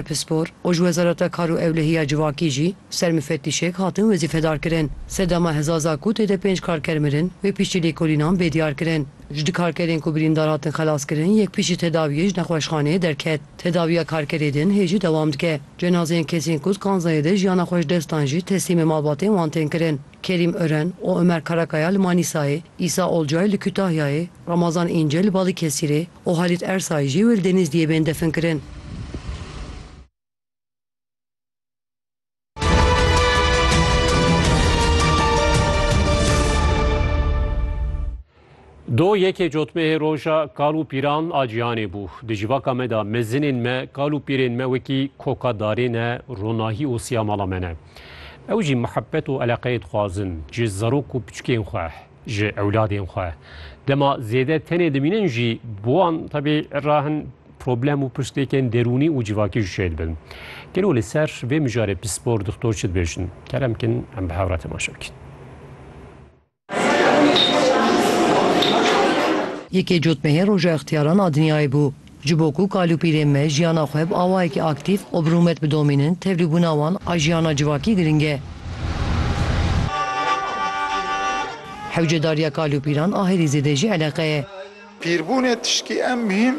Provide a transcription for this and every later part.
Pispor û ji Wezareta Kar û Ewlehiya Civakî jî ser mifetîşek hatin wezîfedar kirin. Sedama Hezaza ku tê de pênc karker mirin, wê piştî lêkolînan bê diyar kirin. Ji du karkerên ku birîndar hatin xelas kirin, yek piştî tedawiyê ji nexweşxaneyê derket. Tedawiya karkerê din hê jî dewam dike. Cenazeyên kesên ku di kanzayê de jiyana xwe ji dest dan jî teslîmê malbatên wan tên kirin. Kerîm Ören û Ömer Karakaya li Manîsayê, Îsa Olcay li Kütahyayê, Ramazan İnce li Balıkesirê, û Halît Ersay jî li Denizliyê bên definkirin. Do yekê cotmehê roja kal û pîran a cîhanê bû. Di civaka me de mezinên me, kal û pîrên me wekî koka darê ne, ronahî û siyamala me ne. Ew jî mihebet û eleqeyê dixwazin ji zarok û piçikên xwe. ji ewladên xwe dema zêde tenê dimînin jî bo wan tebî rahin problem û pirsgirêkên derûnî û civakî ji şêr dibin. Gelo li ser vê mijarê pispor doktor çi dibêjin? Kerem kin em bi hevra temaşe bikin. Yekê cotmehên Roja Extiyaran a Dinyayê bû. Ji bo ku kalûpîlên me jiyana xwe bi awayekî aktîf û bi rûmet bidomînin, tevlîbûna wan a jiyana civakî girîng e. Hewcedariya kalûpîlan a herî zêde jî eleqe ye. Pîrbûnê tiştî em mihîm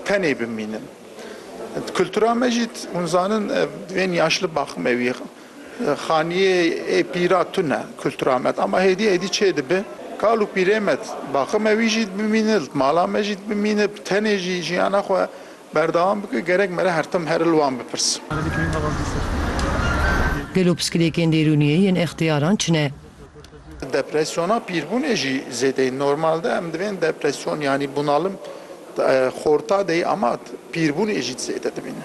tenê bimînin. Di kultura me jî hûn zanin divên yaşli baxim ewî Xaniyê ê pîra tune kultura me ama hêdî hêdî çê dibe. Kal û pîrê me baqe me wî jî dibimîne, li mala me jî dibimîne, bi tenê jî jiyana xwe berdewam bike gerek me re her tim her li wan bipirsin. Gelo piskilêkên dêrûniyê yên extiyaran çi ne? Depresyona pîrbûnê jî zêdeyî normal de. Em divên depresyon yanî bunalim xorta de yî ama pîrbûnê jî zêde dimîne.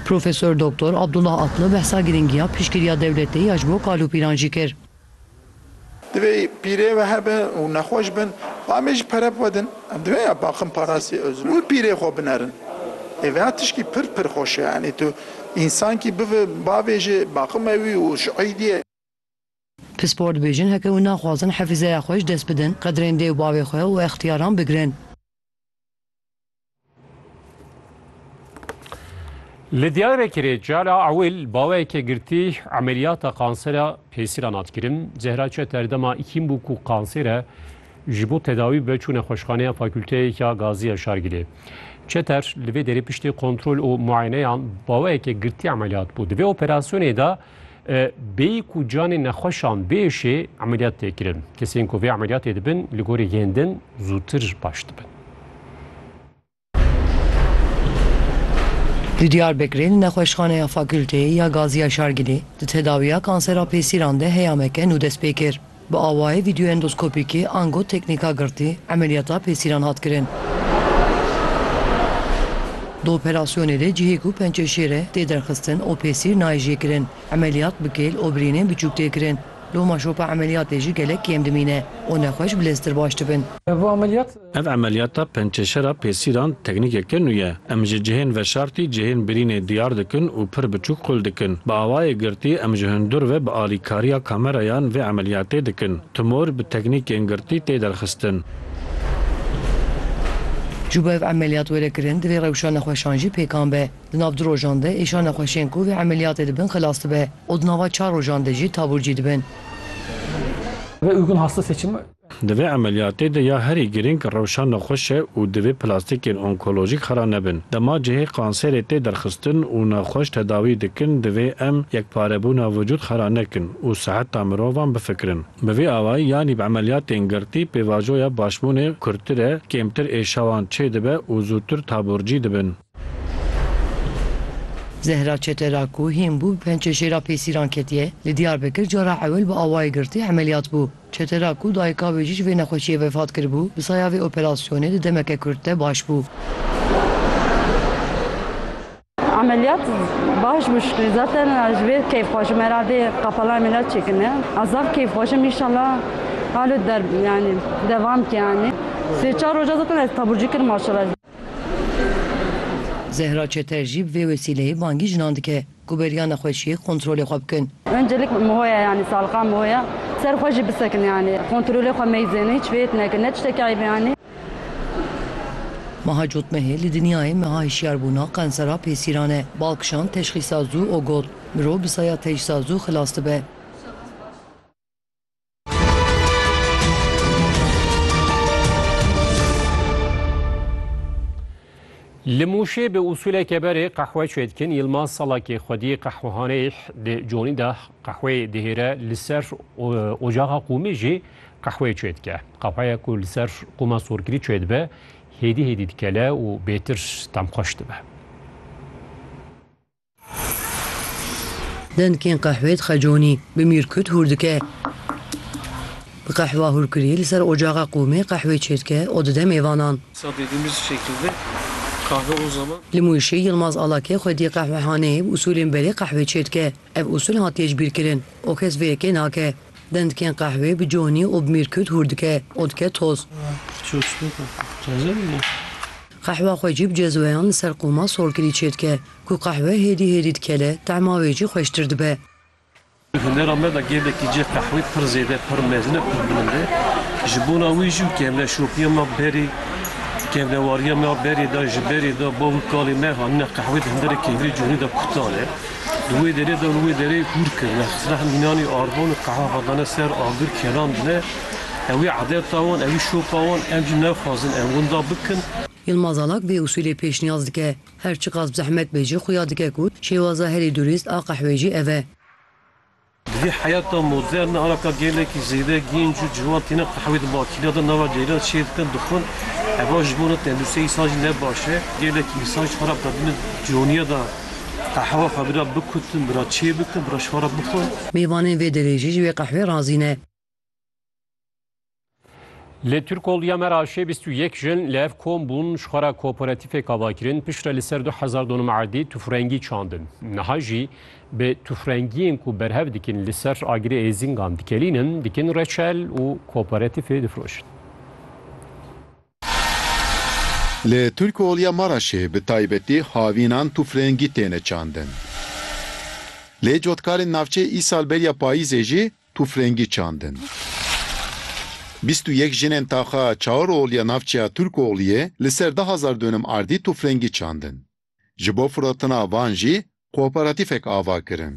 Profesor Doktor Abdullah Atlı behsa girîngiya piştgiriya dewletê ya ji bo kalûpîran jî kir. Divê pîrê we hebe û nexweş bin xwe em ê ji pere bivedin. Em divê ya Baxin Parasî Ozil û pîrê xwe binerin. Ê vêya tişkî pir pir xweş e. Yanî tu însankî bive bavê ji Baxin me wî û ji Eîdî ye. Pispor dibêjin heke û naxwazin hefîzeya xwe ji dest bidin, qedrên dê û bavê xwe û extiyaran bigirin. Li Diyarbekirê cala ewil baweyeke girtî emeliyata kansera pêsîran hat kirin. Zehra Çet erdema îkîn bû ku kansêre ji bo tedawî be çûne xweşxaneya fakülteyeka Gaziya Şargilê. Çeter li vê derê piştî kontrol û muayeneyan baweyeke girtî emeliyat bû. Di vê operasyonê de Bêyî ku canê nexweşan bêşê emeliyat tê kirin. Kesên ku vê emeliyatê dibin li gorî yên din zûtir baş dibin. Di Diyarbekirê di nexweşxaneya Fakûlteyê ya Gaziya Şargilê di tedawiya kansera pêsîran de heyameke nû dest pê kir. Bi awayê vîdyoendoskopîkê ango teknîka girtî emeliyata pêsîran hat kirin. Di operasyonê de cihê ku pençe şêr e tê derxistin û pêsîr nayê jê kirin. Emeliyat bi kêl û birînên biçûk tê kirin. Loma şopa emeliyatê jî gelek kêm dimîne û nexweş bileztir baş dibin. Ev emeliyata pençeşera pêsîran teknîkeke nû ye. Em ji cihên veşartî cihên birînê diyar dikin û pir biçûk qul dikin. Bi awayê girtî em ji hundir ve bi alîkariya kamerayan vê emeliyatê dikin. Tumor bi teknîkên girtî tê derxistin. Ji bo ev emeliyat were kirin divê rewşa nexweşan jî pêkan be. Di nav du rojan de êşa nexweşên ku vê emeliyatê dibin xilas dibe û di nava çar rojan de jî taburcî dibin. Di vê emeliyatê de ya herî girîng rewşa nexweş e û divê plastîkên onkolojîk xera nebin. Dema cihê kanserê tê derxistin û nexweş tedawî dikin divê em yekparebûna vücûd xera nekin û siheta mirovan bifikirin. Bi vî awayî yanî bi emeliyatên girtî pêvajoya başbûnê kurtir e, kêmtir êşawan çêdibe û zûtir taburcî dibin. Zehra Çetera ku hîn bû bi pençe jêra pêsîran ketiye, li Diyarbekir cara ewil bi awayê girtî emeliyat bû. Çetera ku dayika wê jî ji vê nexweşiyê vefat kiribû, bi saya vê operasyonê di demeke kurt de baş bû. Ameliyat baş bû şikrî zaten ji vê keyf xwajim heradê qapala ameliyat çêkirine. Ez zaf keyf xwajim înşallah halo der yani devam ke yani. Sê çar roja zaten ez taburcî kirim maşallah. Zehra Çeter jî bi vê wesîleyê bangî jinan dike ku beriya nexweşiyê kontrolê xwe bikin. Öncelik Moya yanî saliqa Moya ser xwe jî bisekin yanî kontrolê xwe meyzên hiç vêt nekin ne tiştekî eyb e yanî. Meha Cotmehê li dinyayê meha hişyarbûna qensera pêsîran e. Bal kişand teşxîsa zû û got, Mirov bi saya tecsa zû xilas dibe. Li Mûşê bi usûleke berê qehwe çêdikin Yilmaz Salakê xwedî qehwehaneyê di conî de qehweyê dihêre li ser ocaxa qûmê jî qehweyê çêdike. Qehweya ku li ser qûma sorkirî çêdibe hêdî hêdî dikele û bêtir temxweş dibe. Dengên qehwê dixe conî, bi mîrkut hûr dike. Bi qehwa hûrkirî li ser ocaxa qûmê qehwê çêdike û dide mêvanan. Li Mûşê Yilmaz Alake xwedî qehwehaneyê bi usûlên berê qehwê çêdike. Ev usûl hatiye jibîrkirin û kes vê yekê nake. Dengên qehwê bi conî û bi mîrkut hûr dike û dike toz. Qehwa xwecî bi cezweyan li ser qûma sorkirî çêdike. Ku qehwe hêdî hêdî dikele, tema wê jî xweştir dibe. Di hunera me de gelekî cih qehwê pir zêde, pir mezin e, pir bilind e. Ji bona wî jî û kevneşopiya me berê, kevnewariya me berê de, ji berê de bav û kalên me hatine qehwê di hunderê kevnê cihûnê de kutan e. Di wê derê de li wê derê hûr kirine, xizine hin mînanê arvan û qehwe vedane ser agir kerandine. Ew ê edeta wan, ew ê şopa wan, em jî nexwazin em winda bikin. Yilmaz Alak vê usûlê pêşniyaz dike. Her çiqas bi zehmet be jî xuya dike ku şêwaza herî durîst a qehwê jî ev e. Di vî heyata modern de araka gelekî zêde gênc û ciwan tîne qehwê di makîna de nava ceyran çêr dikin, dixwin. Heva ji bo tenduristiyê însan jî ne baş e. Gelekî însan ji xwe re qe bine coniya de qehwa xwe bira bikutin, bira çêbikin, bira ji xwe re bixwin. Mêvanên vê derê jî ji wê qehwê razî ne. Li Tirkoliya me raşê 21 jin li ev kom bûn ji xwe re kooperatîfê kavakirin piştre li ser 2000 donum erdî tufrengî çandin. Niha jî bi tufrengiyên ku berhev dikin li ser agirê êzîngan dikelînin, dikin reçel û kooperatîfê difrojin. Li Tirkoliya me raşê bi taybetî havînan tufrengî têne çandin. Lê cotkarên navçê îsal beriya payîzê jî Tûfrengî çandin. Bîst û yek jinên taxa Çaoroğlu ya navçeya Turkoğlu'yê li ser du hezar dûnim ardî tûfrengî çandin. Ji bo firotina van jî kooperatîfek ava kirin.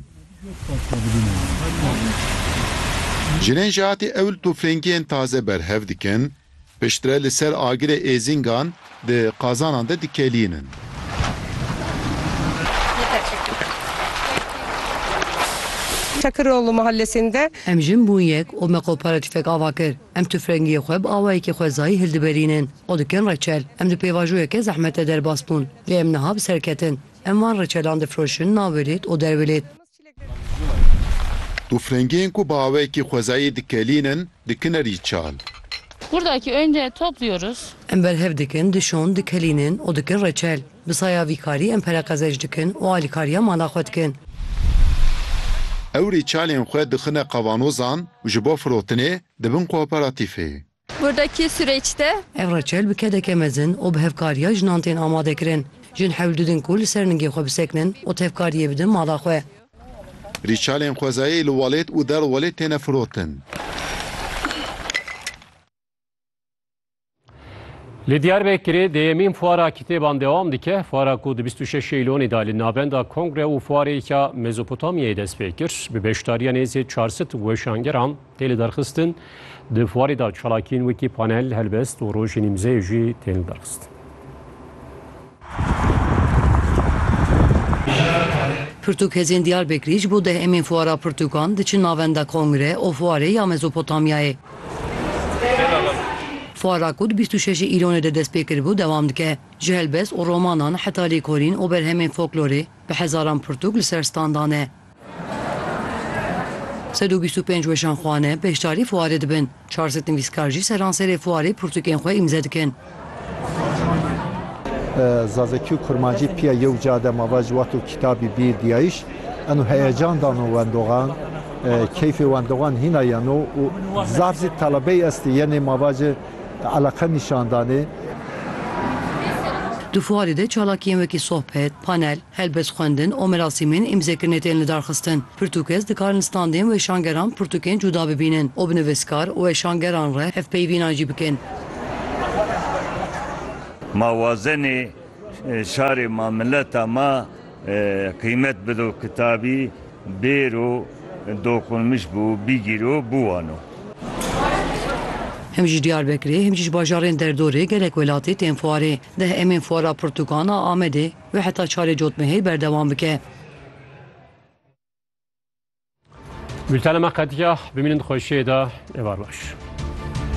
Jinên ji hatî ewil tûfrengiyên taze berhev dikin Piştre li ser agirê êzîngan di qazanan de dikelînin. Tekiroğlu Mahallesinde. Em jin bûn yek û me qopara tüfek ava kir. Em tufrengiyê xwe bi awayekî xwezayî hildiberînin û dikin reçel. Em di pêvajoyeke zehmete derbas bûn. Lê em niha bi ser ketin. Em van reçelan difiroşin navê lêt û dervê lêt. Tûfrengiyên ku bi awayekî xwezayî dikelînin dikin erî çal. Buradaki önce topluyoruz. Em berhev dikin, dişon, dikelînin û dikin reçel. Bi saya vî karî em pereqezej dikin û alîkariya mala xwe dikin. Ew rîçalên xwe dixine qavanozan û ji bo firotinê dibin kooperatîfê. Burdakî sûreç de. Ev reçel bi kedeke mezin û bi hevkariya jinan tên amadekirin. Jin hewl didin ku li ser ningê xwe bisekinin û tevkariyê bidin mala xwe. Rîçalên xwezayê li welêt û der welêt têne firotin. Li Diyarbekirê dêyemîn fuara kitêban dewam dike. Fuara ku di bîst û şeş Şêylonê de li navenda Kongre û Fuarêka Mezopotamyayê dest pê kir, bi beşdariya nêzî çar sed weşangeran Tê lidarxistin, di fuarê de çalakiyên wekî panel, helbest û rojên îmzeyê jî tên lidarxistin. Pirtûk Hêzên Diyarbekirî ji bo deh emîn Fuara Pirtûkan diçin navenda Kongre û Fuarê ya Mezopotamyayê. Fuara ku di bîst û şeşê Îlonê de dest pê kiribû dewam dike. Ji helbest û romanan heta lêkolîn û berhemên foklorê bi hezaran pirtûk li ser standan e. Sed û bîst û pênc weşanxwane beşdarî fuarê dibin, çar sed nivîskar jî seranserê fuarê pirtûkên xwe îmze dikin. Zazakî û kurmancî pîya yew ca de mava ji wat û kîtabî bî dîyayiş eno heyecan dano wendoxan, keyfê wendoxan hîna yeno û zaf zî telebeyî estê yenê mava ji eleqe nîşan danê. Di fuarê de çalakiyên wekî sohbet, panel, Helbet xwendin û merasîmên îmzekirinê tên lidarxistin. Pirtûk kes dikarin standên weşangeran pirtûkên cuda bibînin û bi nivîskar û weşangeran re hevpeyvînan jî bikin. Ma wazenê şarê ma mileta ma qîmet bido kitabî bêro doqunmiş bû bîgîro bûwano. Him ji Diyarbekirê him jî ji bajarên derdorê gelek welatî tên fuarê. Deh emên fuara pirtûkan a Amedê. Wê heta çarê cotmehê berdewam bike. Bültena me qetiya. Bimînin di xweşiyê de. Êvar baş.